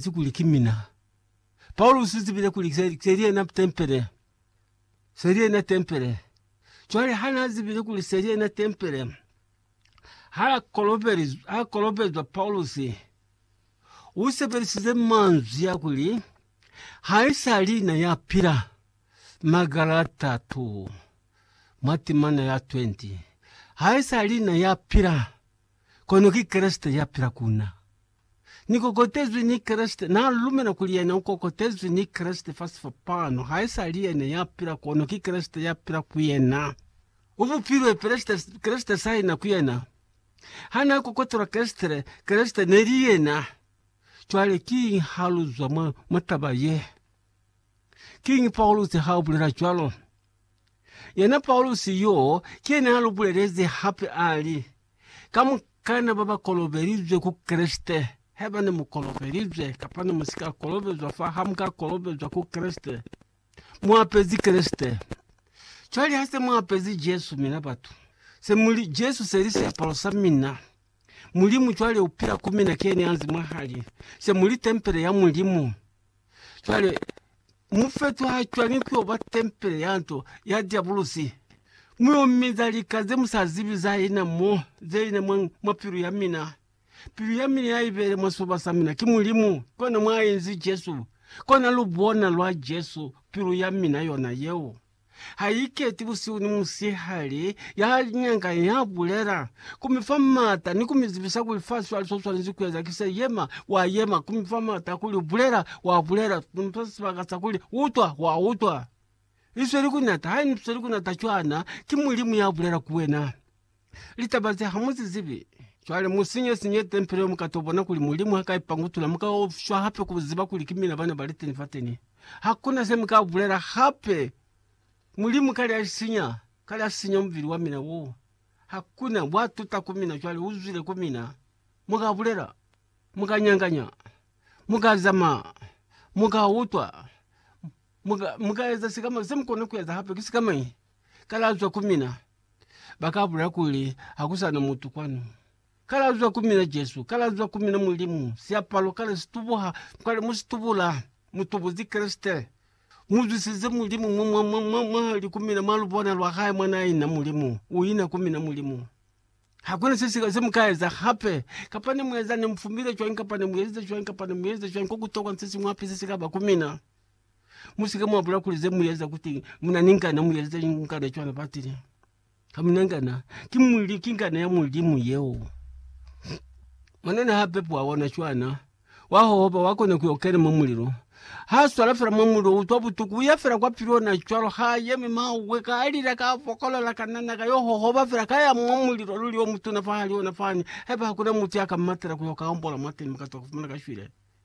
Ki kuli ki mina. Paulusi u zibile kuli se, se li yena tempele. Se li yena tempele. Cwale ha na zibile kuli se li yena tempele, ha kolobelizwa, ha kolobelizwa Paulusi, u sebelisize manzwi ya kuli, ha i sa li na ya pila. Magalata 2 mwa timana ya 20 ha i sa li na ya pila, kono ki Kreste ya pila ku na. Ni kokotezwi ni Kreste. Na lumela kuli yena u kokotezwi ni Kreste fa sifa pano. Ha isali yena ya pila, kono ki Kreste ya pila ku yena. U bupilwe Kreste, Kreste saina ku yena. Ha na kokotelwa Kreste, Kreste neli yena. Cwale kiñi ha lu zwa mwa, mwa taba ye? Kiñi Paulusi ha bulela cwalo? Yena Paulusi yo, ki yena ya lu bulelezi hape, a li, Kamukana baba kolobelizwe ku Kreste, haiba ne mu kolobelizwe kapa ne musika kolobezwa fa ha muka kolobezwa ku Kreste, mu apezi Kreste. Cwale ha se mu apezi Jesu, mina batu, se muli, Jesu seli siapalo sa mina, Mulimu cwale upila ku mina, kiyena yanzi mwahali, se muli tempele ya Mulimu. Cwale, mufeto ha cwani kuyo ba tempele ya nto ya diabulusi, muyo minza lika ze musa zibi za ina mo, ze ina mwa, mwa pilu ya mina. Pilu ya mina ya ibele mwa sifuba sa mina, ki Mulimu, kona mwa inzi Jesu, kona lubona lwa Jesu, pilu ya mina yona yeo. ha i keti busihu ni musihali, ya nyanga ya bulela, ku mi fa m'ata ni ku mi zibisa kuli fa swali so swanezi ku eza. Ki se yema, wa yema, ku mi fa m'ata kuli bulela, wa bulela, ku mi fa sibaka sa kuli utwa, wa utwa. I sweli ku nata, ha i sweli ku nata cwana, ki Mulimu ya bulela ku wena. Litaba ze hamuzizibi. Cwale musinye sinye tempele yo mukato bona kuli Mulimu haka ipangutula muka shwa hape kuziba kuli ki mina bana baliteni fateni. Hakuna se muka bulela hape. Mulimu kale alisinya, kale asinya mubili wa mina wo. Hakuna, bwa tuta ku mina cwale uzwile ku mina. Muka bulela, muka nyanganya, muka zama, muka utwa, muka, muka eza sikama, se mukona kueza hape ki sikamañi? kalazwa ku mina, ba ka bulela kuli, Ha ku sa na mutu kwanu. Kalazwa ku mina Jesu, kalazwa ku mina Mulimu, siapalo kale si tubuha, kwale mu si tubula, mu tubuzi Kreste. Mu zwisize Mulimu mwa, mwa, mwa, mwa, mwa li ku mina mwa lubona lwa hae mwa na ina Mulimu, u ina ku mina Mulimu. Ha ku na se siñwi se mu ka eza hape, kapa ne mu eza, ne mu fumile cwañi, kapa ne mu ezize cwañi, kapa ne mu ezize cwañi, ko ku tokwa ni se siñwi hape se si ka ba ku mina. Musike mwa bula kuli ze mu eza kuti mu na ni ngana, mu yeleza ni ngana cwana batile. Ha mu na ngana, ki Mulimu, ki ngana ya Mulimu yeo. Mwanana ha pepwa ona cwana, wa hohoba, wa kona ku yo kena mwa mulilo. Ha swala fela mwa mulilo, utwa butuku, uya fela kwa pili ona cwalo, ha yemi mawe, ka lila, ka fokolola, ka nana, ka yo hohoba fela, ka ya mwa mulilo, luli o mutuna fahali ona fani, haiba hakuna mutu ya ka mmatela ku yo ka ombola mwateni, mukatu wa ku fumana ka shwile.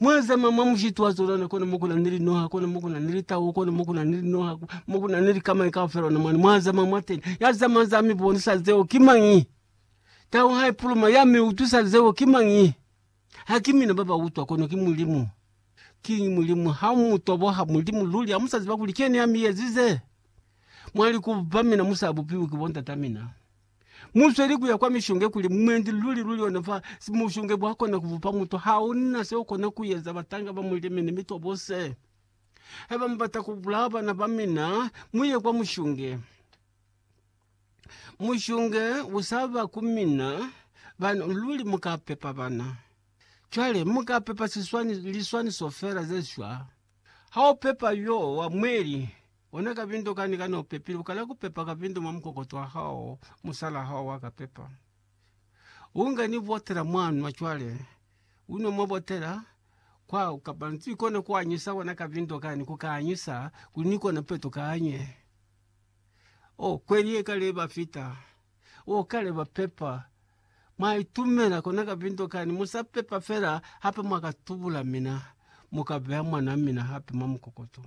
Mwa zama mwa mushiti wa zolana kona mo kuna ni linoha, kona mo kuna ni litau, kona mo kuna ni linoha, mo kuna ni likamañi kaufela ona mwana. Mwa zama mwa teni. Ya zama za mi bonisa zeo ki mañi? Tau ha ipuluma ya mi utwisa zeo ki mañi? Ha ki mina ba ba utwa, kono ki Mulimu. Kiñi Mulimu? Ha mu toboha Mulimu luli, ha mu sa ziba kuli ki yena ya mi ezize? Mwa li ku ba mina mu sa bupiwi ki bo ndata mina. Musweli kuya kwa mishonge kuli mumwendi luli luli ona fa mushonge bwa kona kubupa mutu hauna se ukona kuyeza batanga ba mulimi ni mitwa bose haiba mubata kubulaa bana ba mina muye kwa mushonge mushonge usaba ku mina bana luli mukapepa bana cwale mukapepa siswani liswaniso fela zeshwa. Ha u pepa yo wa mweli, ona kabindo kani kani u pepile, u kala ku pepa kabindo mwa mukokoto wa hao, musalaa hao wa ka pepa. U nga ni botela mwa nwa cwale, u nwa mwa botela, kwa kapa ni kona ku anyisa ona kabindo kani, ku ka anyisa kuli ni kona peto kanye. Oh, kweli ye kale ba fita. Oh, kale ba pepa. Mwa itumela kona kapinto kani, mu sa pepa fela hape mwa ka tubula mina, mu ka beha mwan'a mina hape mwa mukokoto.